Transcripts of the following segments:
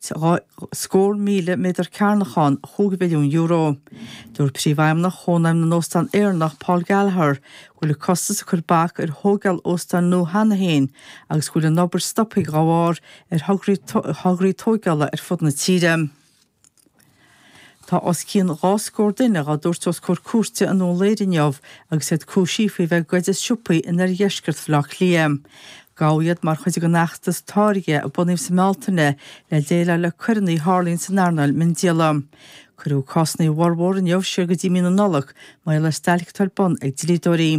dhá scór míle méadar cearnach ann, chúig mhilliún euro. Dúirt Príomhfheidhmeannach Chónaidhm na nÓstán Éireannach, Paul Gallagher, go bhfuil an costas ag cur bac ar thóigeáil óstáin nua cheana féin agus go bhfuil an obair stoptha dá bharr ar thograí tóigeála ar fud na tíre. Tá os cionn dhá scór duine dhá dtabhairt os comhair cúirte i nDún Laoghaire inniu agus iad cúisithe faoi bheith ag goid as siopaí in oirdheisceart Bhaile Átha Cliath. Gabhadh iad mar chuid den fheachtas Táirge a bunaíodh sa mBealtaine le déileáil le coireannaí a tharlaíonn san earnáil miondíola. Cuireadh cásannaí a bhformhór inniu siar go dtí mí na Nollag mar gheall ar stailc atá ar bun ag dlíodóirí.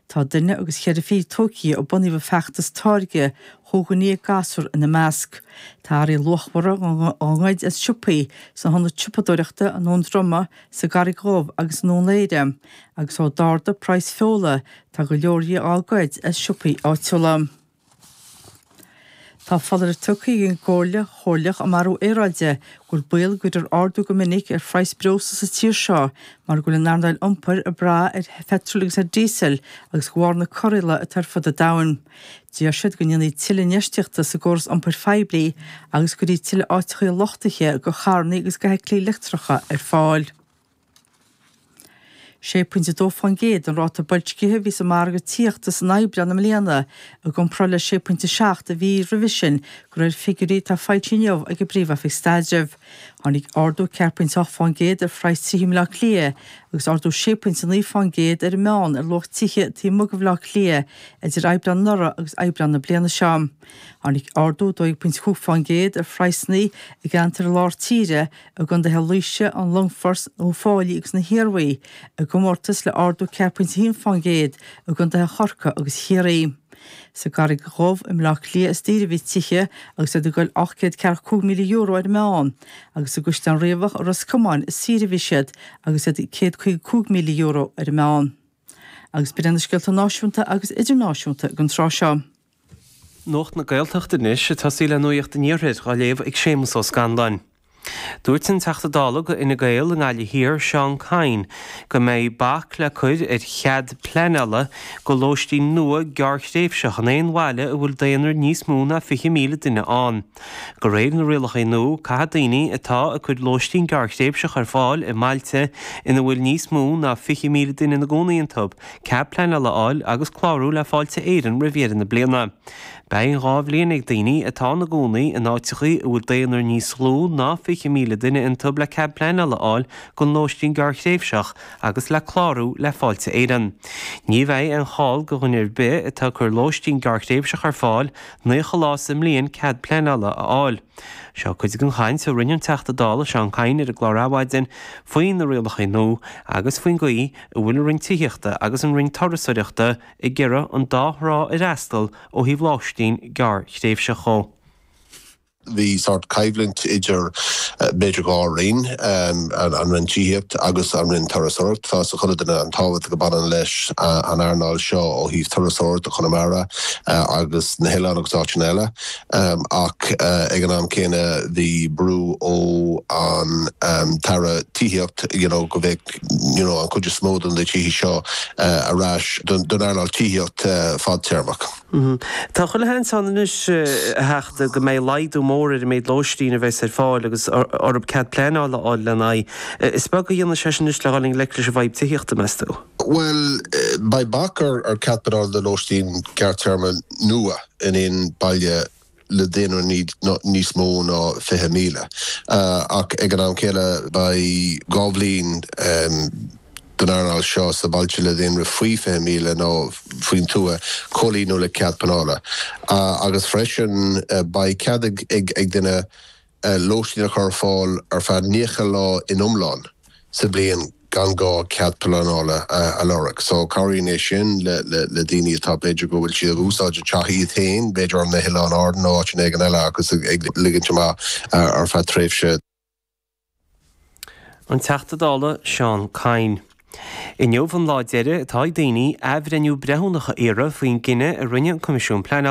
Tá duine agus cheithre fichid tógtha ó bunaíodh an feachtas Táirge chúig dhuine dhéag gasúr ina measc. Tá earraí luachmhara á ngoid as siopaí, san ionad siopadóireachta i nDún Droma, sa gCarraig Dhubh agus i nDún Laoghaire, agus ó d'ardaigh praghas feola tá go leor dhi á goid as siopaí áitiúla. Tá foláireamh tugtha ag an gComhairle Chomhairleach um Athrú Aeráide go bhfuil baol go gcuirfear ardú go minic ar phraghas breosla sa tír seo mar go bhfuil an earnáil iompair ag brath ar pheitreal agus ar díosal agus go bharr na corraíola atá ar fud an domhain. D'iarr siad go ndéanfaí tuilleadh infheistíochta sa gcóras iompair phoiblí agus go gcuirfí tuilleadh áiteachaí luchtaithe go charrannaí agus go fheithiclí leictreacha ar fáil. 6.2 faoin gcéad an ráta boilscithe a bhí sa margadh tithíochta san Aibreán i mbliana, i gcomparáid le 6.7 an mhí roimhe sin, de réir figiúirí atá foilsithe inniu ag an bPríomh-Oifig Staidrimh. Tháinig ardú ceathair pointe ocht faoin gcéad ar phraghas tithe i mBleá Cliath agus ardú sé pointe a naoi faoin gcéad ar an meán ar luach tithe taobh amuigh de Bhleá Cliath idir Aibreán anuraidh agus Aibreán na bliana seo. Tháinig ardú dó dhéag pointe cúig faoin gcéad ar phraghsanna i gceantar Lár Tíre i gcondaetha Laoise, an Longfoirt, Uíbh Fhailí agus na hIarmhí i gcomórtas le ardú ceathair pointe a haon faoin gcéad i gcondaetha Chorcaí agus Chiarraí. Sa gCarraig Dhubh i mBleá Cliath is daoire a bhí tithe agus iad ag goil ocht gcéad ceathracha cúig míle euro ar an meán, agus i gCaisleán Riabhach i Ros Comáin is saoire a bhí siad agus iad ag céad caoga cúig míle euro ar an meán. Agus b'in iad na scéalta náisiúnta agus idirnáisiúnta ag an tráth seo. Nuacht na Gaeltachta anois, ag tosaí le nuacht an Iarthair, dhá léamh ag Séamus Ó Scanláin. Dúirt an Teachta Dála do Fhine Gael i nGaillimh Thiar, Seán Kyne, go mbeidh bac le cur ar chead pleanála go lóistín nua gearrthréimhseach in aon bhaile a bhfuil daonra níos mó ná 20,000 duine ann. De réir na rialacha nua, caithfidh daoine atá ag cur lóistín gearrthréimhseach ar fáil i mbailte ina bhfuil níos mó ná 20,000 duine ina gcónaí iontu, cead pleanála a fháil agus clárú le Fáilte Éireann roimh dheireadh na bliana. Beidh dhá bhliain ag daoine atá ina gcónaí in áiteachaí a bhfuil daonra níos lú ná 20,000 duine iontu le cead pleanála a fháil don lóistín gearrthréimhseach agus le clárú le Fáilte Éireann. Ní bheidh aon chall do dhuine ar bith atá ag cur lóistín gearrthréimhseach ar fáil 90 lá sa mbliain cead pleanála a fháil. Seo cuid den chaint a rinne an Teachta Dála Seán Kyne ar an gclár Adhmhaidin faoi na rialacha nua agus faoin gcaoi a bhfuil an Roinn Tithíochta agus an Roinn Turasóireachta ag iarraidh an dá thrá a fhreastal ó thaobh lóistín gearrthréimhseach de. Bhí sórt coimhlint idir, b'fhéidir dhá roinn, an Roinn Tithíochta agus an Roinn Turasóireachta. Tá 'fhios ag chuile duine an tábhacht a bhaineann leis an earnáil seo ó thaobh turasóireachta, Chonamara agus na hOileáin agus áiteanna eile. Ach ag an am céanna bhí brú ó an tAire Tithíocht you know go bheadh you know an chuid is mó de na tithe seo ar ais don earnáil tithíocht fadtéarmach. Tá chuile sheans ann anois a Theachta go mbeidh laghdú mór ar an méid lóistín a bheas ar fáil agus orthu cead pleanála a fháil lena aghaidh. Is beag a dhéanfaidh sé sin anois le dhul i ngleic leis an bhfadhb tithíochta meas tú? Bhuel beidh bac ar ar cead pleanála do lóistín gearrtéarma nua. in aon baile le daonra níos mó ná 20,000. Ach ag an am céanna beidh dhá bhliain don earnáil seo sna bailte le daonra faoi 20,000 nó faoin tuath comhlíonadh le cead pleanála agus freisin beidh cead ag ag duine lóistín a chur ar fáil ar feadh 90 lá in iomlán sa bhliain gan gá cead pleanála a lorg. So cabhraíonn é sin le daoine atá, b'fhéidir go bhfuil siad ag úsáid an teach iad féin, b'fhéidir ar na hOileáin Árann nó áiteanna éigin eile agus ag ligint amach ar feadh tréimhse. An Teachta Dála Seán Kyne, Inniu an lá deiridh atá ag daoine athbhreithniú breithiúnach a iarraidh faoin gcinneadh a rinne an Coimisiún Pleanála.